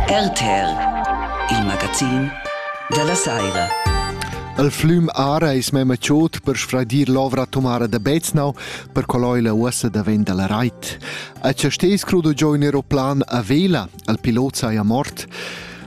RTL, il magazin dalla saira. Il flum Ara es mema chod per sfradir l'ovra atomara da Beznau per coloi la uossa da ven dalla rait. A ce stes crudo giò in aeroplan a vela, al pilot saja mort.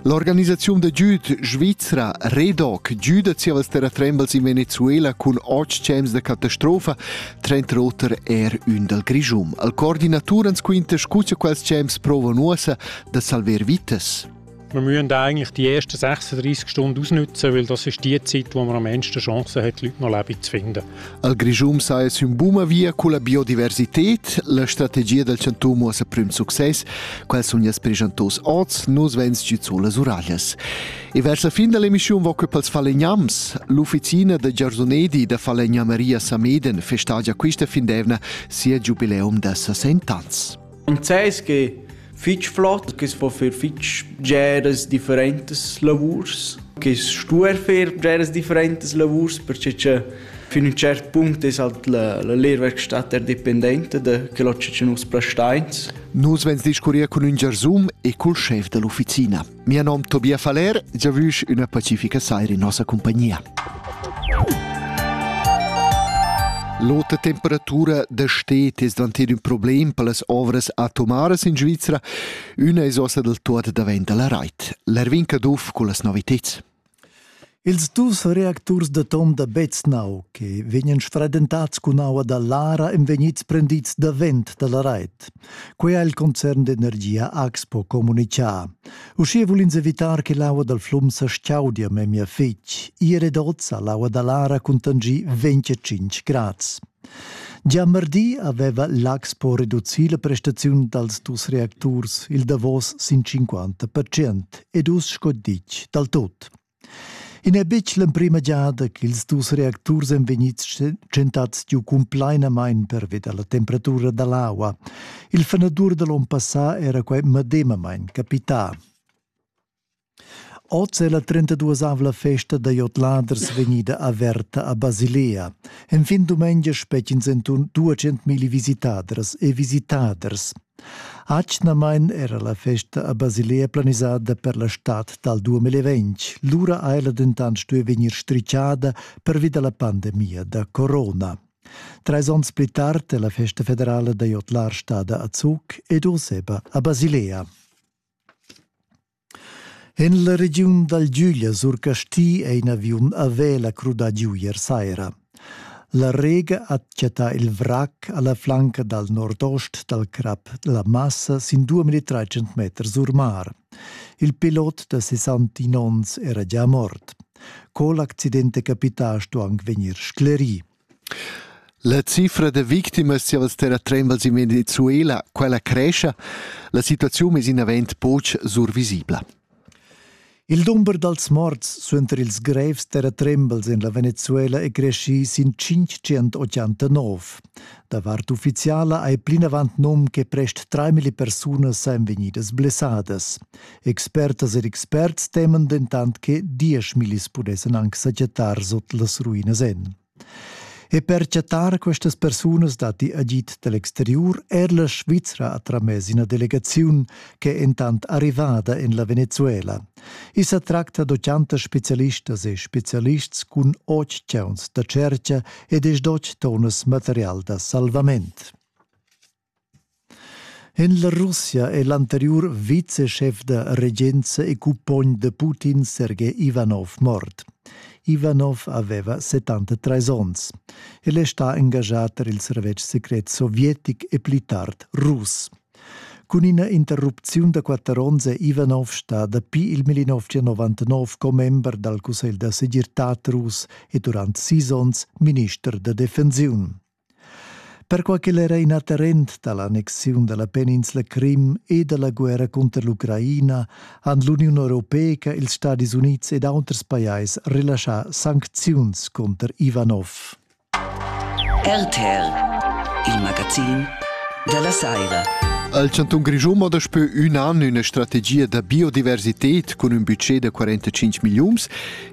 L'organisaziun da giud svizra Redoc giuda zievas terratrembels in Venezuela cun otg temps da catastrofa, trenta oter er ün dal Grischum. Al coordinatur ans quinta scu cha quels temps provan uossa da salver vitas. Wir müssen eigentlich die ersten 36 Stunden ausnutzen, weil das ist die Zeit, wo man am meisten Chancen hat, Leute noch Leben zu finden. Al Grischun saja sün buna via culla biodiversited. La strategia dal chantun muossa prüm success. Quels sun jas preschantos oz, nus vegns giu sulas uraglias. E vers la fin dell'emissiun voco pels falegnams. L'ufficina da Giarzonedi da Falegnamaria Sameden festagia quista fin d'evna sia giubileum da 60 ans. Enzais che fich flot, che po fer fich bgeras differentas lavurs, che stuer fer bgeras differentas lavurs, perche che fin un cert punct es halt la, la lehrwerkstatt er dependente da quello che nus prestains. Nus vegns discurrir cun ün gersum e cul schef dall'ufficina. Mia nom Tobias Faller, giavüsch üna pacifica saira in nossa compagnia. L'ota temperatura da stet es dvanted ün problem per las ovras atomaras in Svizra, üna es ossa del tuot davent alla rait. L'Erwin Caduff cu las noviteds. Ils dus reacturs d'atom da Beznau che vegnan sfradentads cun aua da Lara èn vegnids prendids davent da la rait. Quai ha il concern d'energia Axpo communitgà. Uschia vul ins evitar che l'aua dal flum sa chaudia memia fitg. Ier ed oz ha l'aua da Lara cuntanschì 25 grads. Gia mardi aveva l'Axpo reducì la prestaziun dals dus reacturs il davos sin 50 percent ed uss sco ditg dal tut. I n'è betg l'emprima giada ch'ils dus reacturs èn vegnids tschentads giu cumplainamain pervi da la temperatura da l'aua. Il fanadur da l'onn passà era quai medemamain capità. Oz è la trentaduasavla festa da jodladers vegnida averta a Basilea. Enfin dumengia spettins enturn 200.000 visitadras e visitaders. Atgnamain era la festa a Basilea planisada per la stad dal 2020. Lura ha ella dentant stuì vegnir stricciada pervi da la pandemia da corona. Trais onns pli tard è la festa federala da jodlar stada a Zug ed Oseba a Basilea. En la regiun dal Giuglia sur Casti è in aviun a vela crudà giu ier saira. La Rega ha chattà il vrac a la flanca dal nordost dal crap La Massa sin 2300 meters sur mar. Il pilot da 69 onns era già mort. Co l'accident è capità sto anc vegnir sclerì. La cifra da victimas siavas terratrembels in Venezuela, quella crescha. La situaziun es inavant pauc survisibla. Il dumber dals morts suenter ils grevs terratrembels en la Venezuela è creschì sin 589. Da vart uffiziala hai plinavant num che prest 3.000 persunas sain vegnidas blessadas. Expertas ed experts teman dentant che dieschmillis pudessan anc sajettar sot las ruinas en. E per chattar questas persunas datti agid dall'exteriur er la Svizra ha tramess ina delegaziun che è entant arrivada en la Venezuela. I sa tracta da chantas specialistas e specialists cun otg chauns da tscherca ed es dot tonas material da salvament. En la Russia è l'anteriur viceschef da regenza e cumpogn da Putin Sergei Ivanov mort. Ivanov aveva 73 onns. El è stà engaschà per il servetsch secret sovietic e pli tard rus. Cun ina interrupziun da quatter onns è Ivanov stà dapi il 1999 commember dal Cussegl da segirtad rus e durant sis onns minister da defensiun. Perquai ch'el era in atterrent da l'annexiun da la peninsla Crim e da la guerra cunter l'Ucraina han l'Uniun Europeica, ils Stadis Unids ed auters pajais relaschà sancziuns cunter Ivanov. RTL, il magazin da la saira. Al chantun Grischun mo daspö ün an üna strategia da biodiversität cun ün budget da 45 milliuns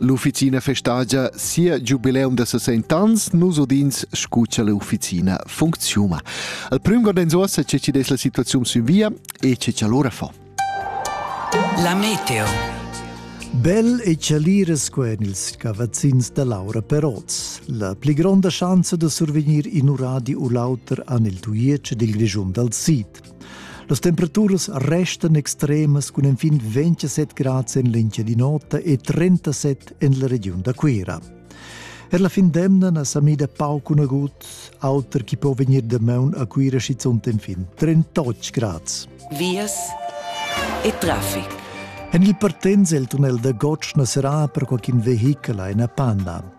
L'ufficina festagia sia giubileum da 60 ans, nus udins scu cha l'ufficina funcziuna. Al prüm gordenzuossa che ci des la situaziun sün via e che ci allora fa. La meteo. Bel e chalira sco en ils cavazzins da Laura Peroz. La pli gronda schanza da survegnir in uradi u l'auter an il tuiec dil Grischun dal Sid. Las temperaturas restan extremas cun enfin 27 grads en l'Engia di Nota e 37 en la regiun da Cuira. Er la fin d'emna na sa mida pauc un agut, auter chi po vegnir damaun a Cuira schizunt enfin 38 grads. Vias e traffic. En il partenz il tunnel da Gotsch na serà per qualcun vehichel a ina panna.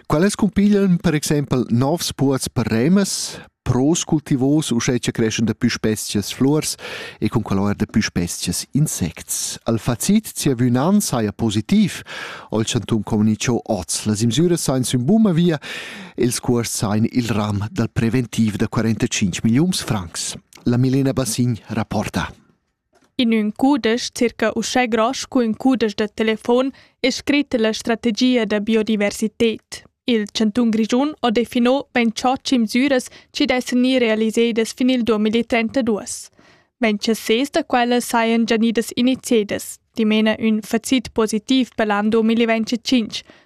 Quelles cumpiglian per exempel novs puots per remas, pros cultivos uschè cha creschan da pü specias fluors e cun quel eir da pü specias insects. Al facit zievün'an saja positiv, ho il chantun comunicho hoz. Las imsüras sajan sün buna via e ils cuors sajan il ram dal preventiv da 45 milliuns francs. La Milena Bassign rapporta. In ün cudesch circa uschè gross scu ün cudesch da telefon es scrit la strategia da biodiversited. Il chantun Grischun ho defino bain cho cimsüras chi dessan gnir realisedas fin il 2032. Ventschasés da quellas sajan già gnidas iniziadas, dimena ün facit positiv per l'an 2025,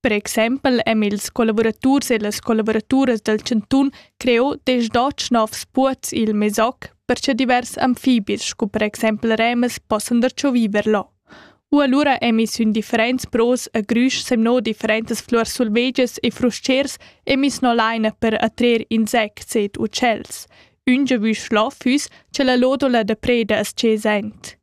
Per exempel èn ils collavuraturs e las collavuraturas dal chantun creò desch dotg novs puozs i'l Mesoc per cha divers amfibis scu per exempel remas possan darcho viver là. U alura emis ün differents pros a grüsch semno differentas fluors sulvegias e frustschers emis no laina per attrer insects ed uccells. Ün giavüsch là füss cha la lodola da preda as dschesent.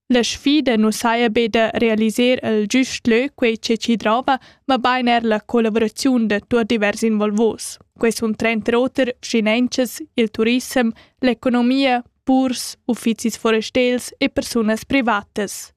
La sfida nu saja be da realiser il giust lö, quei che chi drova, mabain er la collavuraziun da tuot divers involvos. Quai sun tranter oter finanzas, il turissem, l'economia, purs, uffizis forestels e persunas privatas.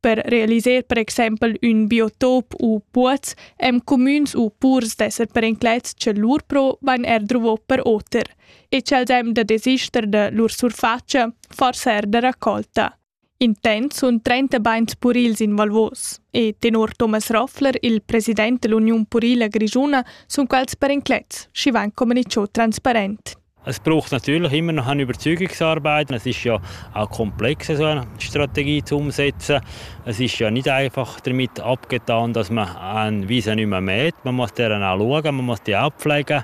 Per realiser per exempel ün biotop u puoz hem cumüns u purs d'esser perenclets cha lur pro vain er druvo per oter. e cel dem da desister da lur surfacia, forsa er da raccolta. Intents sun 30 bains purils involvos e tenor Thomas Roffler, il president dell'Union Purila Grigiuna, sun quels per inclets, schi van comunicio transparent. Es braucht natürlich immer noch eine Überzeugungsarbeit. Es ist ja auch komplex, so eine Strategie zu umsetzen. Es ist ja nicht einfach damit abgetan, dass man, wie sie nicht mehr mäht, man muss deren auch schauen, man muss die auch pflegen.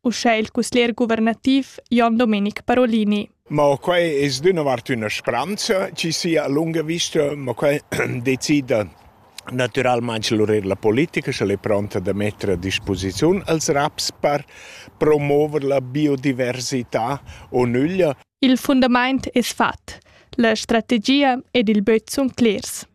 uschè il cusglier guvernativ Jon Domenic Parolini. Ma quai è d'una vart una speranza ci sia a lunga vista, ma quai decide Naturalmente la politica se è pronta da mettere a disposizione als RAPS per promuovere la biodiversità o nulla. Il fundament è fatto, la strategia ed il böt son clars.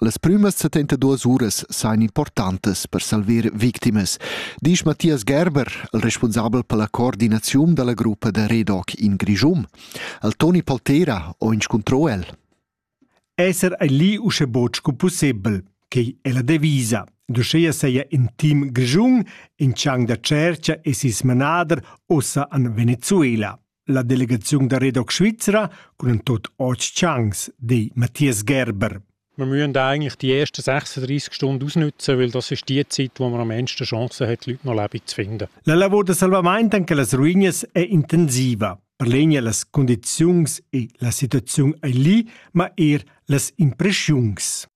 Las prümas 72 uras sajan importantas per salver victimas, disch Matthias Gerber, il responsabel per la coordinaziun da la gruppa da Redoc in Grischum. Al Toni Paltera ho inscuntrò el. Esser ei lì usche boc sco possibel, quei è la devisa. Duscheia seia in team grischun in chang da tschercia e sis manader ossa an Venezuela. La delegaziun da Redoc Svizra cun tot otg Chance, di Matthias Gerber. Wir müssen eigentlich die ersten 36 Stunden ausnutzen, weil das ist die Zeit, wo man am meisten Chancen hat, Leute noch Leben zu finden. La lavor da salvament anche las ruinas è intensiva. Per legna las condizions e la situazione è lì, ma er las impressiuns.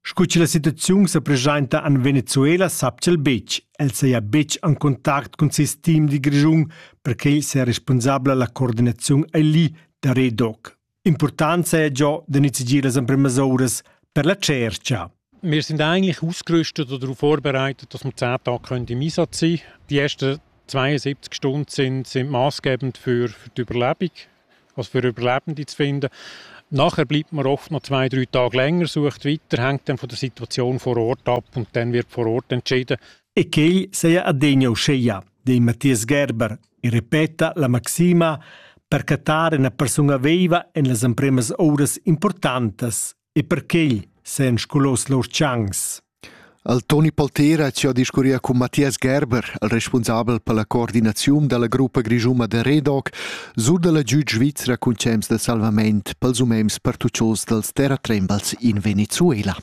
Sco che la situaziun sa presenta en Venezuela sappia el betg. El saja betg en contact cun ses team di Grischun, perquai saja responsabla la coordinaziun ali da Redoc. Important saja già da nizigir las emprimas uras per la cerca. Wir sind eigentlich ausgerüstet oder darauf vorbereitet, dass wir zehn Tage im Einsatz sein können. Die ersten 72 Stunden sind, sind maßgebend für, für die Überlebung. was wir überleben die zu finden. Nachher bleibt man oft noch zwei, drei Tage länger, sucht weiter, hängt dann von der Situation vor Ort ab und dann wird vor Ort entschieden. E quei seia adegna uscheia, di Matthias Gerber, e repeta la maxima per cattar una persona viva en las empremas oras importantas E perquei s'han sculos lur tschancs. Al Toni Poltera ci ha discurria cun Mathias Gerber, il responsabel per la coordinaziun della gruppa grischuma de Redoc, sur della giud svizra cun cems de salvament pels umems pertuccios dels terratrembals in Venezuela.